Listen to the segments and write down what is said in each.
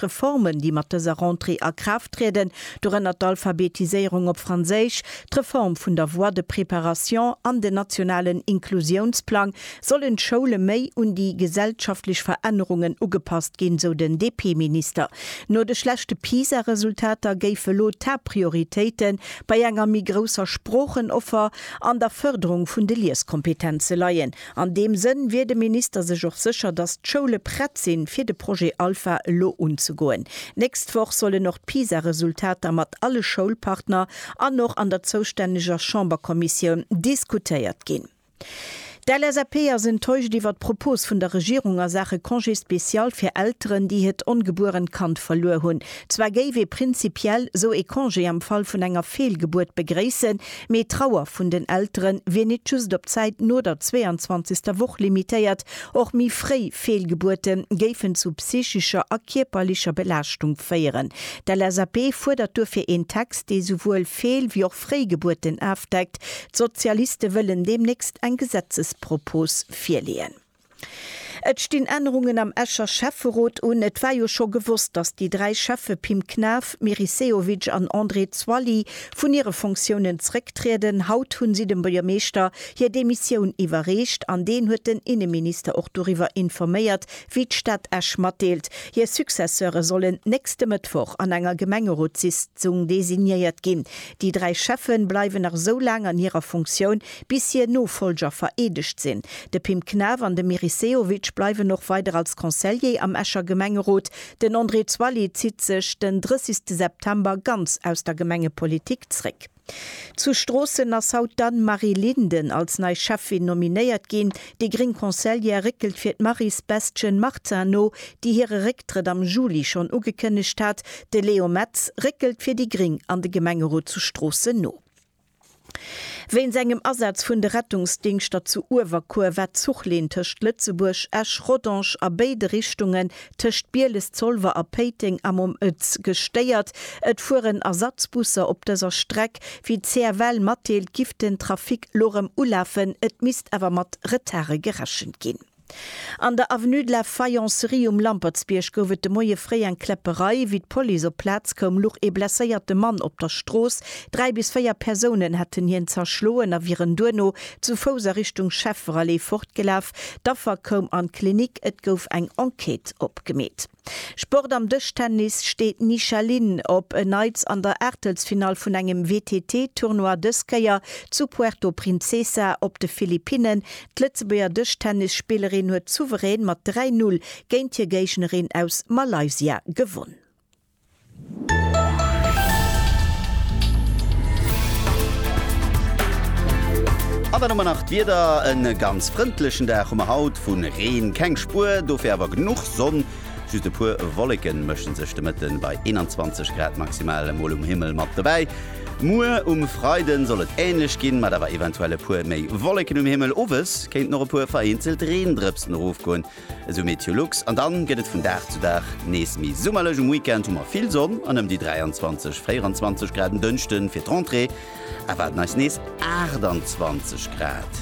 Reformen, déi mat dëser Rentrée a Kraaft trieden, dorënner d'Alphabetiséierung op Franséisch, d'Reform vun der Voie de préparation an den nationalen Inklusiounsplang, sollen d'Schoule méi un déi gesellschaftlech Verännerungen ugepasst ginn, sou den DP-Minister. No de schlechte PISA-Resultater géife lo d'Haaptprioritéite bei enger méi grousser Sproochenoffer an der Fërderung vun de Lieskompetenze leien. An deem Sënn wier de Minister sech och sécher, datt d'Schoule prett sinn, fir de Projet Alpha elo unzegoen. D'nächst Woch sollen och d'PISA-Resultater mat alle Schoulpartner an och an der zoustänneger Chamberkommissioun diskutéiert ginn. D'LSAP ass enttäuscht iwwer d'Propos vun der Regierung a Saache Congé spécial fir Elteren, déi hiert ongebuerent Kand verluer hunn. Zwar géif ee prinzipiell esou ee Congé am Fall vun enger Feelgebuert begréissen, Mee d'Trauer vun den Eltere wier nit just op d'Zäit no der 22. Woch limitéiert. Och méi fréi Feelgebuerte géifen zu psychescher a kierperlecher Belaaschtung féieren. D'LSAP fuerdert duerfir een Text, dee souwuel Feel wéi och fréi Gebuerten afdeckt. D'Sozialiste wëllen deemnächst eng Gesetzespropos virleeën. Et stinn Ännerungen am Escher Schäfferot un. Et war jo scho gewosst, datt déi dräi Schäffe Pim Knaff, Meris Sehovic an André Zwally vun hire Funktiounen zrécktrieden. Haut hu si dem Buergermeeschter hir Demissioun iwwerreecht an deen huet den Inneminister och doriwwer informéiert, wéi d'Stad Esch matdeelt, hir Successeure sollen nächste Mëttwoch an enger Gemengerotssitzung designéiert ginn. Déi dräi Schäffe bleiwen nach esou laang an hirer Funktioun, Bis hier Nofolger vereedegt sinn. De Pim Knaff an de Meris Sehovic bleiwen och weider als Conseiller am Escher Gemengerot. Den André Zwally zitt sech den 30 September ganz aus der Gemengepolitik zréck. Zu Stroossen ass haut d'Anne-Marie Linden als nei Schäffin nominéiert ginn. Déi gréng Conseillère réckelt fir d'Maryse Bestgen-Martin no, déi hire Récktrëtt am Juli schonn ugekënnegt hat. De Léo Metz réckelt fir déi gréng an de Gemengerot zu Stroossen no. Wéinst engem Asaz vun de Rettungsdingschter zu Uewerkuer war d'Zuchlinn tëscht Lëtzebuerg, Esch, Rodange a béide Richtungen, tëscht Bieles, Zolwer a Péiteng am Om Ëtz, gestéiert. Et fueren Ersatzbusser op dëser Streck. Wéi d'CFL matdeelt, giff den Trafic lo rëm ulafen, et misst awer mat Retarde gerechent ginn. An der Avenue de la Faïencerie um Lampertsbierg gouf et de Moie fréi eng Kläpperei. Wéi d'Police op d'Plaz koum, luch ee blesséierte Mann op der Strooss. Dräi bis véier Persounen hätten hien zerschloen a wieren duerno zu Fouss a Richtung Schäfferallee fortgelaf. D'Affer koum an d'Klinik, et gouf eng Enquête opgemeet. Sport Am Dëschtennis steet d'Nisha Lin op en Neits an der Aachtelsfinall vun engem WTT Tournoi, dës Kéier zu Puerto Princesa op de Philippinnen. D'Lëtzebuerger Dëschtennisspillerin huet souverän mat 3, 0 géint hir Géignerin aus Malaysia gewonn. An dann hu mer nach d'Wieder. E ganz frëndlechen Dag hu mer haut, vu Reen keng Spuer, dofir awer genuch Sonn. Just e puer Wolleke mësche sech de Mëtte bei 21 Grad maximal emol um Himmel mat dobäi. Muer um Freide soll et änlech ginn, mat awer eventuell e puer méi Wolleken um Himmel. Owes kéinten och e puer vereenzelt Reendrëpsen erofgoen. Esou Meteolux an dann gëtt et vun Dag zu Dag nees méi summerlech. Um Weekend hu mer vill Sonn an ëm déi 23, 24 Grad. En Dënschden fir d'Rentrée erwaarden eis nees 28 Grad.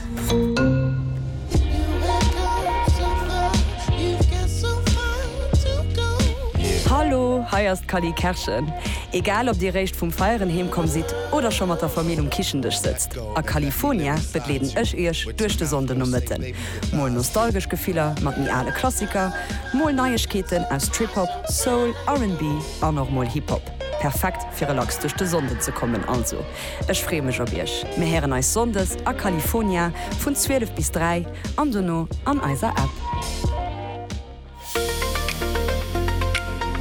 Hallo, hei ass d'Cally Kerschen. Egal ob dir réischt vum Feieren heem komm sidd oder scho mat der Famill um Kichendësch sëtzt, a California begleeden ech iech duerch de Sonndenomëtten. Mol nostalgesch Gefiller mat méi ale Klassiker, mol Neiegkeeten aus Trip-Hop, Soul, RnB an och mol Hip-Hop. Perfekt fir relax duerch de Sonnden ze kommen. Also ech freeë mech op iech. Mir héieren eis Sonndes a Califonia vun 12 bis 3 an dono an eiser App.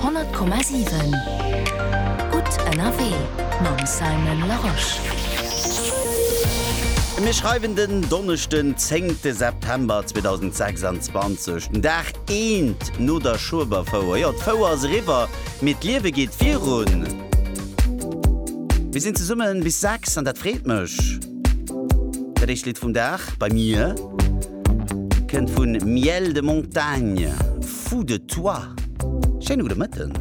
Honnert Komma siwen Gutt ënnerwee mam Simon Larosche. Mir schreiwen den Donneschden zéngte September 2026, den Dag eent no der Schueberfouer. Jo, d'Fouer ass eriwwer, mee d'Liewe geet virun. Mir sinn zesummen bis sechs an dat freet mech. Dat éischt Lidd vum Dag bei mir. Kënnt vun miel de montagne, fou de toi. Schéine gudde Mëtten.